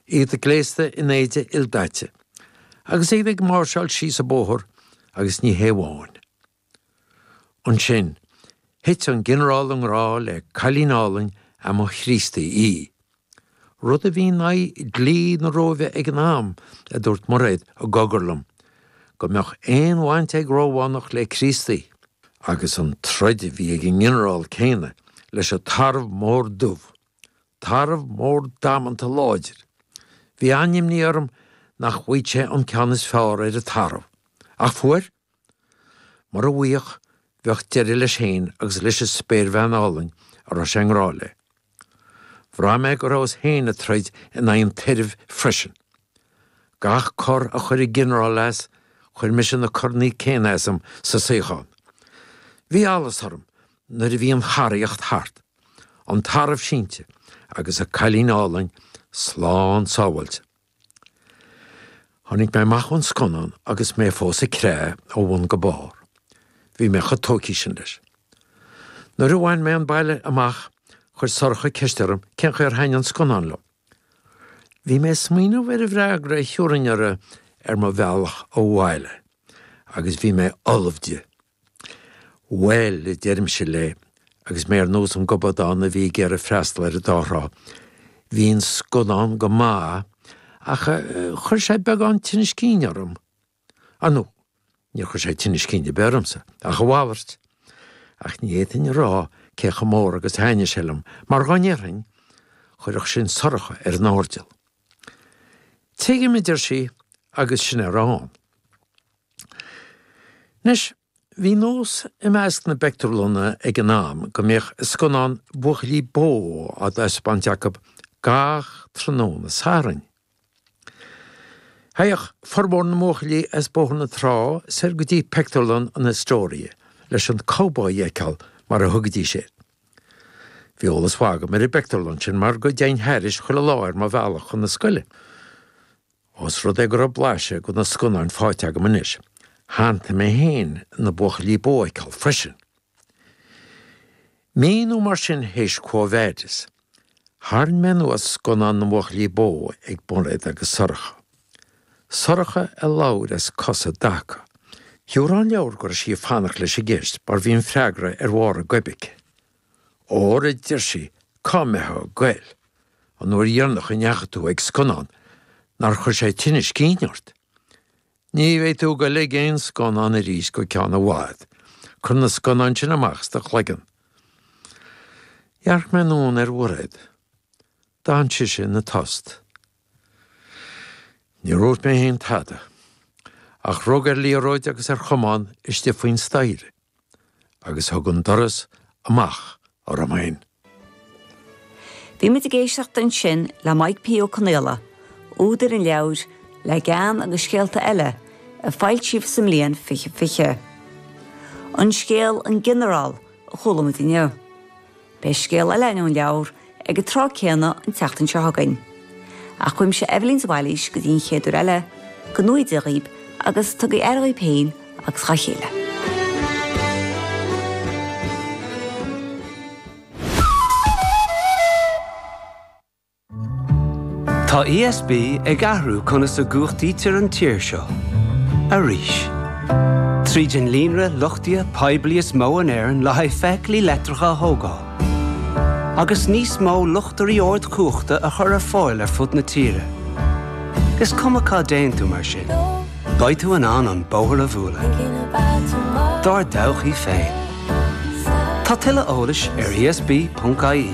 iad gléasta in éide ildaite agus iad ag máirseáil síos an bóthar agus ní hé amháin. Ansin, thit an Ginearál i ngrá le cailín álainn a mba Chríostaí í, rud a bhí in aghaidh dhlí na Róimhe ag an am, a dúirt Mairéad i gcogar liom, go mbeadh aon bhaint ag Rómhánach le Críostaí. Agus an troid a bhí ag an nGinearál céanna leis an tarbh mór dubh, Tarbh mór damanta láidir. Bhí an-imní orm nach bhfaigheadh sé an ceann is fearr ar an tarbh. Ach fuair. Mura bhfaigheadh, bheadh deireadh leis féin agus leis an spéirbhean álainn a raibh sé i ngrá léi. Bhraith mé go rabhas féin ag troid in aghaidh an tairbh freisin. Gach cor a chuir an Ginearál as, chuir mise na coranna céanna asam sa suíochán. Bhí allas orm nuair a bhí an choraíocht thart. an tarbh sínte agus a cailín álainn slán sábháilte. Tháinig mé amach ón scannán agus mé fós ag creathadh ó bhun go barr. Bhí mé chomh tógtha sin leis. Nuair a bhain mé an baile amach, chuir Sorcha ceist orm cén chaoi ar thaitin an scannán liom. Bhí mé ag smaoineamh ar an bhfreagra a thabharfainn uirthi ar mo bhealach abhaile agus bhí mé ullamh di. Bhail, a deirimse léi, agus mé ar nós an gobadán a bhí ag iarraidh freastal ar an dá thrá, bhí an scannán go maith, ach chuir sé beagán tinneas cinn orm. Ar ndóigh, níor chuir sé tinneas cinn ar bith ormsa, ach a mhalairt. Ach ní fhéadfainn a rá cé chomh mór agus a thaitnigh sé liom, mar dhá ndéarfainn, chuirfeadh sin Sorcha ar an airdeall. Tuigim, a deir sí, agus sin é a raibh ann. Anois, bhí nós i measc na bpictiúrlanna ag an am go mbíodh scannán buachaillí bó á thaispeáint acu gach tráthnóna Sathairn. Théadh formhór na mbuachaillí as Bóthar na Trá soir go dtí pictiúrlann an Astoria leis an cowboy a fheiceáil, mar a thugaidís air. Bhí eolas maith agam ar an bpictiúrlann sin mar go dtéinn thairis chuile lá ar mo bhealach chun na scoile. Ós rud é go raibh blaiseadh de na scannáin faighte agam anois, shantaigh mé féin na buachaillí bó a fheiceáil freisin. Mí nó mar sin théis Quo Vadis, tharraing mé anuas scannán na mbuachaillí bó ag Mairéad agus Sorcha. Sorcha a labhair as cosa i dtaca. Dar an leabhar go raibh sí ag fanacht leis an gceist mar bhí an freagra ar bharr a goib aici. Óra, a deir sí, cá mbeitheá goil an uair dheirneach a ndeachaigh tú ag scannán nár chuir sé tinneas cinn ort. Ní bheidh tú goil ag aon scannán aríst go ceann i bhfad. Cuir na scannáin sin amach as do chloigeann. Dhearc mé anonn ar Mhairéad. D'fhan sise ina tost. Níor dhúirt mé féin tada, ach rug ar liathróid agus ar chamán istigh faoin staighre agus thug an doras amach orm féin. Bhí muid ag éisteacht ansin le Mike P. Ó Conaola, údar an leabhair Le Gean agus Scéalta Eile, a foilsíodh sa mbliain 2020. An scéal 'An Ginearál' a chuala muid inniu. Beidh scéal eile in An Leabhar ag an tráth céanna an tseachtain seo chugainn. Ach uaimse Eibhlín de Bhailís go dtí an chéad uair eile, go ngnóthaí Dia dhaoibh agus tugaigí aire dhaoibh féin agus dhá chéile. Tá ESB ag athrú conas a gcumhachtaítear an tír seo, arís. Tríd an líonra luchtaithe poiblí is mó in Éirinn le haghaidh feithiclí leictreacha a thógáil, agus níos mó luchtairí ardchumhachta a chur ar fáil ar fud na tíre, is cuma cá dtéann tú mar sin. Beidh tú in ann an bóthar a bhualadh dár dtodhchaí ghlé. Tá tuilleadh eolais ar ESB.ie.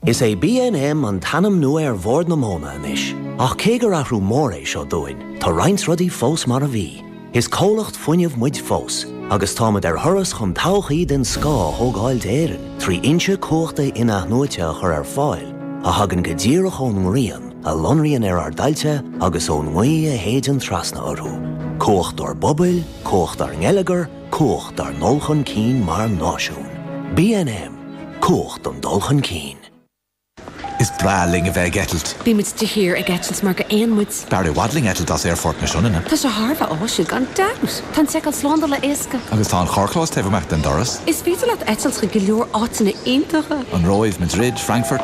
Is é BNM an t-ainm nua ar Bhord na Móna anois, ach cé gur athrú mór é seo dúinn, tá roinnt rudaí fós mar a bhí. Is comhlacht fuinnimh muid fós, agus táimid ar thuras chun todhchaí den scoth a thógáil d'Éirinn trí fhoinse cumhachta in-athnuaite a chur ar fáil a thagann go díreach ón ngrian a lonraíonn ar ár dtailte agus ón ngaoth a shéideann trasna orthu. Cumhacht dár bpobail, cumhacht dár ngeilleagar, cumhacht dár ndul chun cinn mar náisiún. BNM, Cumhacht don dul chun cinn. Is breá linn a bheith ag eitilt. Bhí muid de shíor ag eitilt mar gur éin muid. B'fhearr i bhfad linn eitilt as Aerfort na Sionainne. Tá sé thar a bheith áisiúil gan dabht! Tá an tseiceáil slándála éasca. Agus tá an carrchlós taobh amach den doras. Is féidir leat eitilt chuig go leor áiteanna iontacha. An Róimh, Madrid, Frankfurt.